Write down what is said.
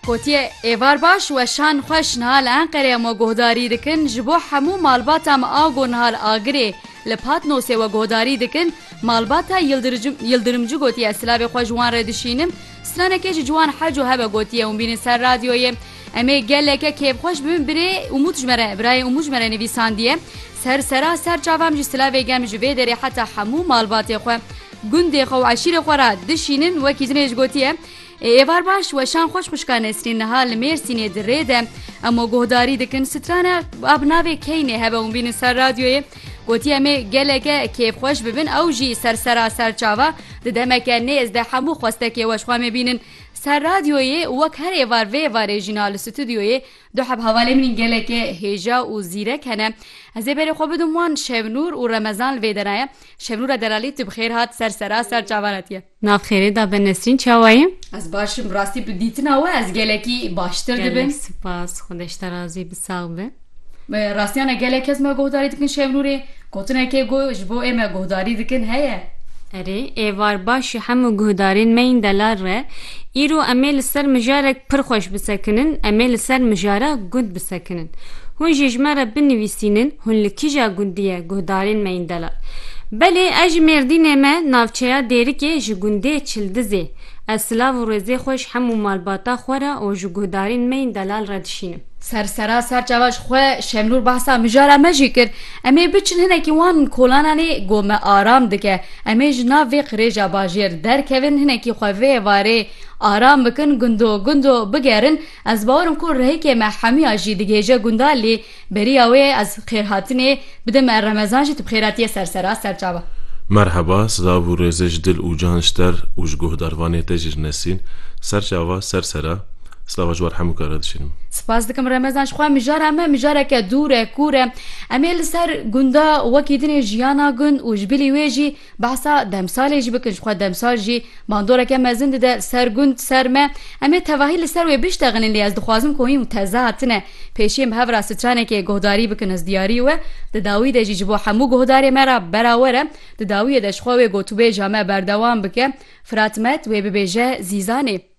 Gotiye, Êvar baş weşan xweş niha li Enqereya me guhdarî dikin, ji bo hemû malbata me a ku niha li Agirê li Patnosê we guhdarî dikin, malbata Yildirimci gotiye silavê xwe ji wan re dişînim, stranekê ji ciwan hec û hebe gotiye hûn bînin ser radyoyê. Em ê geleke kêfxweş bibin birê Umut ji me re birayê Umut ji me re nivîsandiye, Ser sera ser çavam jî silavê germ ji vê derê heta hemû malbatê xwe. Gundê xwe û eşîrê xwe re dişînin wekî jinê ji gotiye, Ê êvar baş weşan xweş xwişka Nesrîn niha li Mêrsînê di rê de emo guhdarî dikin strana ba bi navê Keynê hebe hûn bînin ser radyoyê gotiye em ê geleke kêfxweş bibin ew jî ser sera ser çava di demeke nêz de hemû xwestekê weş xwe em ê bînin ser radyoyê û wek her êvar vê êvarê jî na li stûdyoyê du heb hevalê min geleke hêja û zîrek hene ez ê berê xwe bidim wan Şevnûr û Remezan li vê de ne ye Şevnûra Delalî tu bi xêr hat ser sera ser çavan hetiye. Nav xêrê da be Nesrîn çawa yî? Ez baş im rastî bi dîtina we ez gelekî baştir dibim. Gelek sipas xwe deşta razî bi sax be. Rastiyan e gelek kes me guhdarî dikin Şevnûrê gotinekê ku ji bo ê me guhdarî dikin heye. Erê êvar baş e hemû guhdarên me yên delal re. Îro em ê li ser mijarek pir xweş bisekinin, em ê li ser mijara gund bisekinin. kinin. Hûn jî ji me re binivîsînin hûn li kija gundî ye guhdarên me yên delal. Belê ez ji Mêrdînê me navçeya Dêrikê ji gundê Çildizê. Ez silav û rêzê xwe ji hemû malbata xwe re û ji guhdarên me yên delal re dişînim. Ser sera ser çava ji xwe Şemnûr behsa mijara me jî kir. Em ê biçin hinekî wan kolananê ku me aram dike. Em ê ji nav vê qirêja bajêr derkevin hinekî xwe vê êvarê aram bikin gundo gundo bigerin. Ez bawer im ku rihêkê me hemiya jî digihêje gundan lê beriya wê ez xêrhatinê bidim me Remezan jî tu bi xêr hatiye ser sera ser çava. Merheba, silav û rêzê ji dil û can ji ter û ji guhdarvanê te jî ji Nesîn. Ser çava, ser sera. Silava ji war hemû ke re dişînim. Spas dikim Remezan ji xwe mijara me mijareke dûr e, kûr e. Em ê li ser gunda wekî dinê jiyana gund û ji bilî wê jî, Behsa demsalê jî bikin ji xwe demsal jî bandoreke mezin dide ser gund ser me. Em ê tevahî li ser wê biştexînin lê ez dixwazim ku hîn û teze hatine pêşiyê me hev re stranekê guhdarî bikin ez diyarî we di dawî de jî ji bo hemû guhdarê me re berawer e di dawiyê de ji xwe wê gotûbêja me berdewam bike Fırat Met wê bibêje Zîzanê.